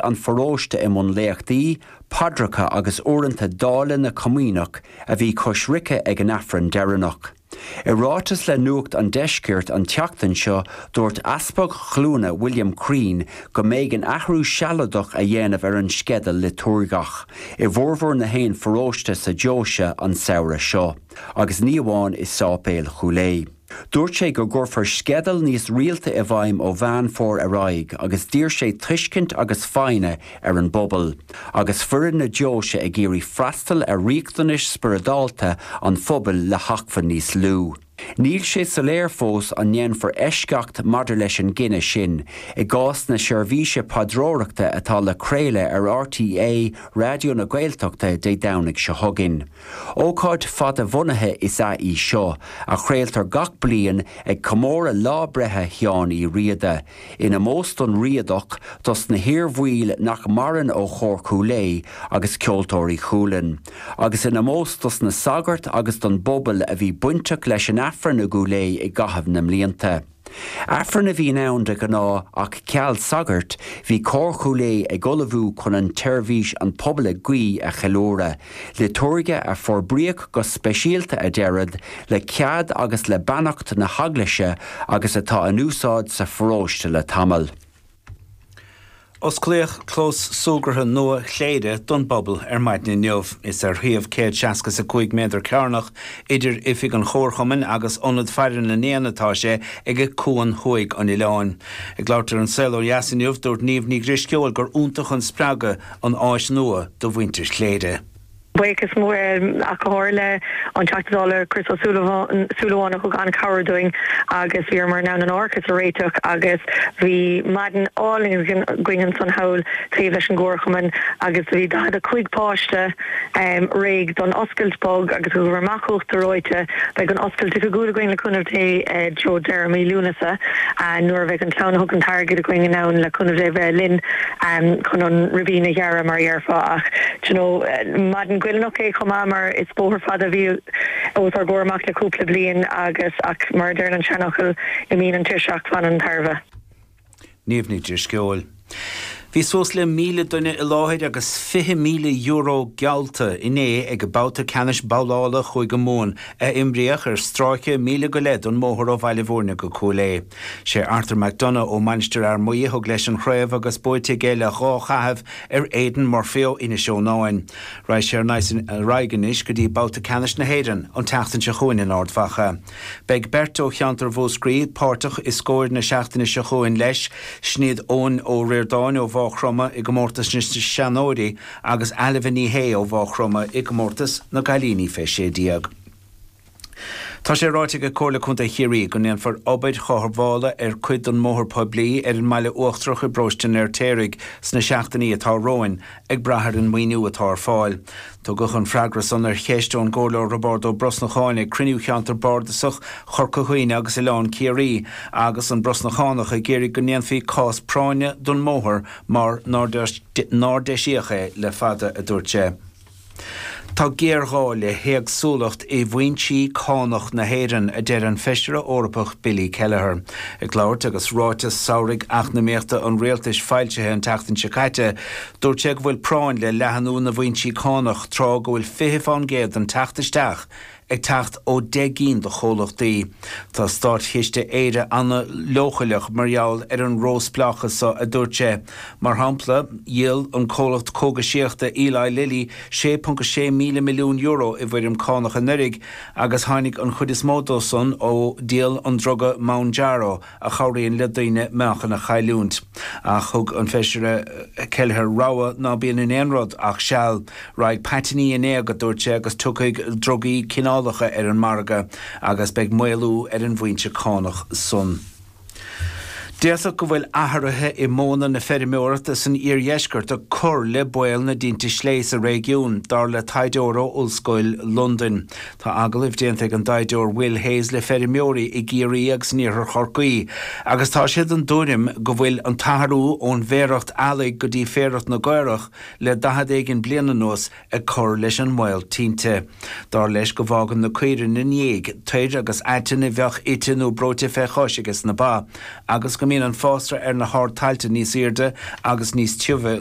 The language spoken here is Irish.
ón pharóiste i mbun léachtaí, paidreacha agus uaireanta dáileadh na comaoineach a bhí coisricthe ag an Aifreann deireanach. I ráiteas le Nuacht an Deiscirt an tseachtain seo, dúirt Easpag Chluana William Crean go mb'éigean athrú sealadach a dhéanamh ar an sceideal liotúirgeach i bhformhór nach aon pharóiste sa deoise an samhradh seo, agus ní amháin i Séipéal Chúil Aodha. Dúirt sé go gcuirfear sceideal níos rialta i bhfeidhm ó Mheán Fómhair ar aghaidh agus d'iarr sé tuiscint agus foighne ar an bpobal agus foireann na deoise ag iarraidh freastal ar riachtanais spioradálta an phobail le hacmhainní níos lú. Níl sé soiléir fós an ndéanfar eisceacht maidir leis an gcinneadh sin i gcás na seirbhíse paidreoireachta atá le craoladh ar RTÉ Raidió na Gaeltachta Dé Domhnaigh seo chugainn. Ócáid fadabhunaithe is ea í seo, a chraoltar gach bliain ag comóradh lá breithe Sheáin Uí Riada, in ómós don Riadach, dos na hiarbhaill nach maireann ó Chór Chúil Aodha agus Ceoltóirí Chualann, agus in ómós dos na sagairt agus don bpobal a bhí bainteach leis an Aifreann i gCúil Aodha i gcaitheamh na mblianta. Aifreann a bhíonn ann de ghnáth ach ceal sagairt, bhí Cór Chúil Aodha ag ullmhú chun an tseirbhís 'An Pobal ag Guí' a cheiliúradh, liotúirge a forbraíodh go speisialta a deiread le cead agus le beannacht na hEaglaise agus atá in úsáid sa pharóiste le tamall. Osclaíodh clós súgartha nua Chléire don bpobal ar maidin inniu. Is ar shuíomh céad seasca is a cúig méadar cearnach idir oifig an Chomharchumainn agus Ionad Faire na nÉan atá sé, ag cuan thuaidh an oileáin. Ag labhairt ar An Saol Ó Dheas inniu, dúirt Niamh Ní Dhrisceoil gur iontach an spreagadh an áis nua do mhuintir Chléire. Buíochas mór ar ndóigh leis an Teachta Dála Chris Ó Súilleabháin a thug an-chabhair dúinn agus bhíomar in ann an t-árachas a réiteach agus bhí maidin álainn againn ansan thall taobh leis an gcomharchumann agus bhí 45 páiste réidh don oscailt bog agus thugamar amach uachtar reoite. Beidh an oscailt oifigiúil againn le cúnamh Dé i dtreo deireadh mí Lúnasa nuair a bheidh an chlann a thug an t-airgead againn in ann le cúnamh Dé bheith linn chun an ribín a ghearradh mar a déarfá ach you know, maidin ghoilliúnach é chomh maith mar is bóthar fada a bhí os ár gcomhair amach le cúpla bliain agus, ach mar a deireann an seanfhocal, imíonn an tuirse ach fanann an tairbhe. Niamh Ní Dhrisceoil. Bhí suas le míle duine i láthair agus €20,000 geallta inné ag an babhta ceannais babhlála Chúige Mumhan a imríodh ar stráice míle go leith den mbóthar ó Bhaile Bhúirne go Cúil Aodha. Sé Arthur McDonagh ó Mainistir Fhear Maí a thug leis an chraobh agus buaite aige le dhá chaitheamh ar Aidan Murphy ó Inis Eonáin. Raghaidh sé ar aghaidh anois go dtí babhta ceannais na hÉireann an tseachtain seo chugainn in Ard Mhacha. Beidh beirt ó cheantar Mhúscraí páirteach i scóir na seachtaine seo chugainn leis, sin iad Eoin Ó Ríordáin ó Mhaigh Chromtha i gcomórtas na seanóirí agus Ailbhe Ní Shé ó Mhaigh Chromtha i gcomórtas na gcailíní fé 16. Tá sé ráite ag Comhairle Contae Chiarraí go ndéanfar obair chothabhála ar cuid den mbóthar poiblí ar an mBaile Uachtarach i bParóiste an Fheirtéaraigh sna seachtainí atá romhainn, ag brath ar an maoiniú atá ar fáil. Tugadh an freagra san ar cheist ón gComhairleoir Roibeárd Ó Brosnacháin ag cruinniú Cheantar Bardasach Chorca Dhuibhne agus Oileán Ciarraí, agus an Brosnachánach ag iarraidh go ndéanfaí cás práinne don mbóthar mar nár deisíodh é le fada, a dúirt sé. Tá géarghá le héagsúlacht i bhfoinsí cánach na hÉireann, a deir an Feisire Eorpach Billy Kelleher. Ag labhairt agus ráiteas samhraidh eacnamaíochta an rialtais foilsithe an tseachtain seo caite, dúirt sé go bhfuil práinn le leathnú na bhfoinsí cánach tráth go bhfuil 20 fán gcéad den teacht isteach ag teacht ó deich gcinn de chomhlachtaí. Tá Státchiste Éire an-leochaileach mar gheall ar an róspleáchas seo, a dúirt sé. Mar shampla, dhíol an comhlacht cógaisíochta Eli Lilly 6.6 míle milliún euro i bhfoirm cánach anuraidh agus tháinig an chuid is mó dó san ó dhíol an druga Mounjaro, a chabhraíonn le daoine meáchan a chailliúint. Ach thug an Feisire Kelleher rabhadh ná bíonn in aon rud ach seal. Raghaidh paitinní in éag, a dúirt sé, agus tiocfaidh drugaí cineálacha ar an margadh agus beidh maolú ar an bhfoinse cánach san. D'fhéadfadh go bhfuil athruithe i modhanna na feirmeoireachta san iardheisceart ag cur le baol na dtinte sléibhe sa réigiún, dar le taighdeoir ó Ollscoil Londain. Tá agallaimh déanta ag an dtaighdeoir Will Hayes le feirmeoirí i gCiarraí agus in iarthar Chorcaí agus tá siad den tuairim go bhfuil an t-athrú ón bhféaracht eallaigh go dtí féaracht na gcaorach le daichead éigin bliain anuas ag cur leis an mbaol tinte. Dar leis go bhfágann na caoirigh ina ndiaidh toir agus aiteann a bheadh ite nó brúite fé chois aiges na ba agus go mbíonn an fásra ar na hardtailte níos airde agus níos tiubhe